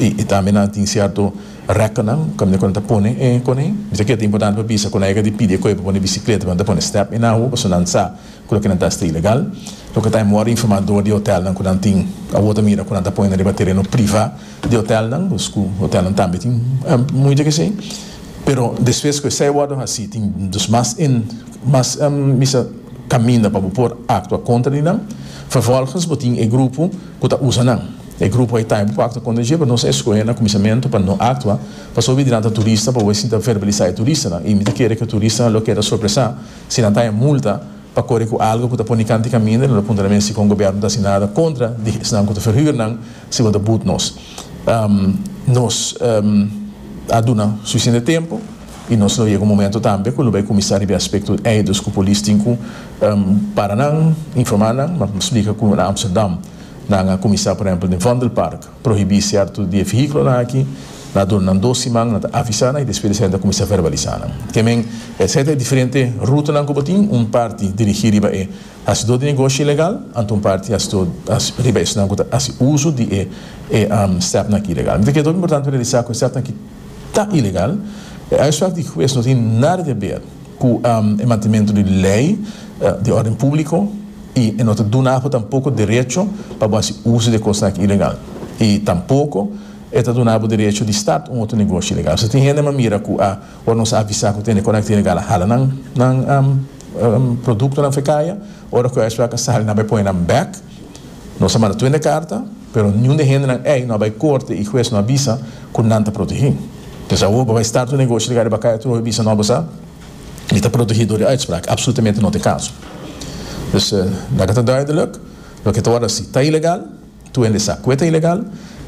I tambe nan a tin cierto recordnan caminda cu nan ta pone e coney. Bisa kier ta importante pa bisa cu nan yega di pidi e coye pa pone bicicleta pa nan ta pone step e nahu pasobra nan sa cu loke nan ta hasta ilegal. Loke ta mor informa door di hotelnan cu nan tin awor ta mira cu nan ta pone na riba tereno priva di hotelnan dus cu hotelnan tambe tin muy di esey pero despues cu esey wordo haci tin dus mas in mas bisa caminda pa bo por actua contra di nan. Vervolgens bo tin e grupo cu ta usa nan. E grupo a Itaibo ku aktua kontra dje, pero nos a eskohe na kuminsamentu pa no aktua pasobra di nan ta turista pa bo e sinta verbalisá e turistanan i mi ta kere ku e turistanan lo keda sorpresá si nan ta haña multa pa kore ku algu ku ta pone kanta i kaminda i nan lo puntra na mi asi kon gobièrnu no ta hasi nada kontra di esnan ku ta ferhür nan si bo ta but nos nos a duna suficiente tempu i nos lo yega un momento tambe ku lo bai kuminsá riba e aspekto eidos ku polis tin ku para nan informá nan ma splika ku na Amsterdam. Nan a kuminsá por ehèmpel den Vondelpark prohibí sierto di e vehíkulonan aki, nan a duna nan dos siman, nan ta avisá nan i despues esei nan ta kuminsá verbalisá nan. Ke men, esei ta e diferente rutanan ku bo tin, un parti dirigí riba e hasidó di negoshi ilegal, anto un parti hasidó riba esnan ku ta hasi uso di e e stèpnan aki ilegal. Mi ta kere tok importante pa realisá ku e stèpnan aki ta ilegal, e uitspraak di hues no tin nada di haber. ku e mantementu di lei di órden públiko i e no ta duna apo tampoko derecho pa bo hasi uso di e kosnan aki ilegal i tampoko e ta duna bo derecho di start un otro negoshi ilegal. Esei tin hende nan mira ku a ora nos a avisá ku tene kosnan aki ta ilegal a hala nan produktonan fekaya ora ku esei a ka sali nan bai pone nan bèk. Nos a manda tuende karta, pero niun di e hendenan ei no a bai korte i hues no a bisa ku nan ta protegí. P'esei awor bo bai start un negoshi riba riba kaya trohe bisa no bo sa mi ta protegí dor di uitsprak? Apsolutamente no ta e kaso. Dus, laga ta duidelik, loke ta wòrdu hasi ta ilegal, tuende sa kue ta ilegal,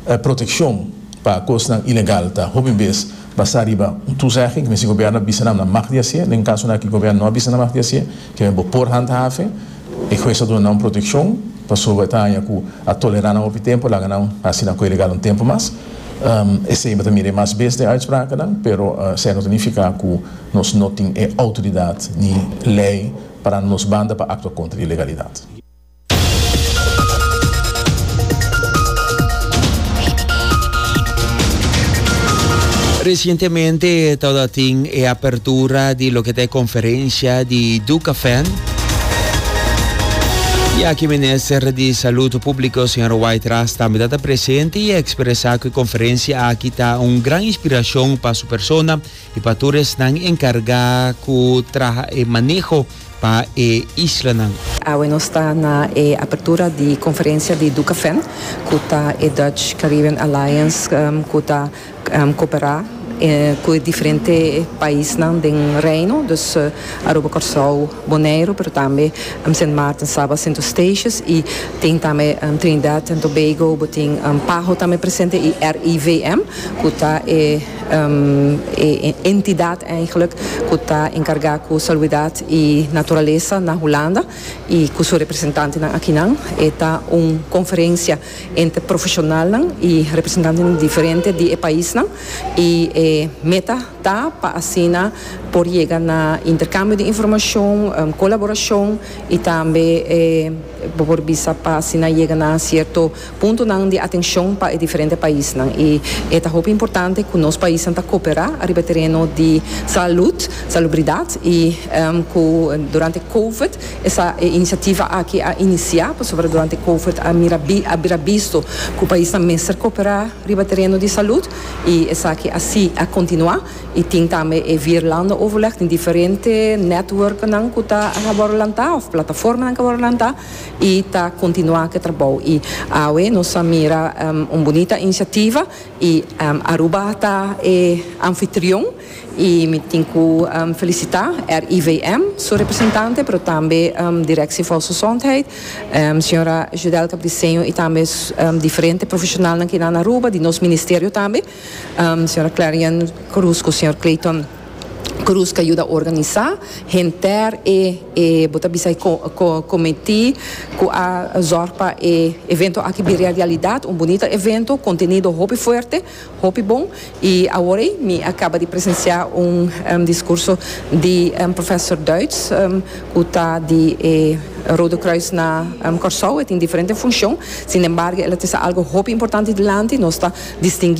e protekshon pa kosnan ilegal ta hopi bes basá riba un tuzegging, misti gobierno a bisa nan nan mag di hasié, den kasonan ki gobierno no a bisa nan mag di hasié. Ke bo por handhaven e hues a duna nan un protekshon pasobra bo e ta haña ku a tolerá nan hopi tempu, laga nan hasi nan kue legal un tempu mas. Esei bo ta mira e mas bes den uitsprakennan, pero esei no ta nifiká ku nos no tin e outoridat ni lei parando nos banda pa aktua kontra di ilegalidat. Recientemente tabata tin e apertura di loke ta e conferencia di Ducafan. Y aki Minister di Salud Publico, señor White Ras, tambe ta ta presente y a expresa cu e conferencia aki ta un gran inspiracion pa su persona I pa tur esnan enkargá ku traha e maneho pa e islanan. Awe nos ta na e apertura di konferensia di Ducafen, ku ta e Dutch Caribbean Alliance ku ta koperá ku e diferente paisnan den Reino, dus Aruba, Kòrsou, Boneiru, pero tambe Sint Maarten, Saba, Sint Eustatius i tin tambe Trinidad and Tobago, bo tin Paho tambe presente i RIVM ku ta e E entidad eigenlijk cu ta encarga cu saluidad y naturalesa na Hulanda y cu su representantenan akinan e ta un conferencia entre profesionalnan y representantenan diferente di e paisnan y e meta ta pa asina por yega na intercambio di informacion, colaboracion y tambe bo por bisa pa asina yega na cierto puntonan di atencion pa e diferente paisnan y e ta hopi importante cu nos paisnan ta coopera ariba e tereno di salud, salubridad y cu durante covid esa e iniciativa aki a inicia pasobra durante covid a mira a bira bisto cu paisnan mester coopera riba e tereno di salud y esaki a si a continua y tin tambe e vier landen overleg tin diferente networknan cu ta a worde lanta of plataformanan cu a worde lanta. y ta continua cu e trabao y awe nos a mira un bunita iniciativa y Aruba ta e anfitrion y mi tin cu felicita RIVM su representante pero tambe Directie Volksgezondheid Sra. Judel Cabriseño y tambe diferente profesionalnan cu e na na Aruba di nos Ministerio tambe Sra. Clarion Cruz cu Sr. Clayton Cruz ta yuda organisa henter e e bo ta bisa e comiti cu a zorg pa e evento aki bira e realidad, un bunita evento, contenido hopi fuerte, hopi bon y awor ey mi a caba di presencia un discurso di Professor Duits cu ta di e Rode Kruis na Corsou, e tin diferente funcion, sin embargo el a trece algo hopi importante dilanti, nos ta distingui.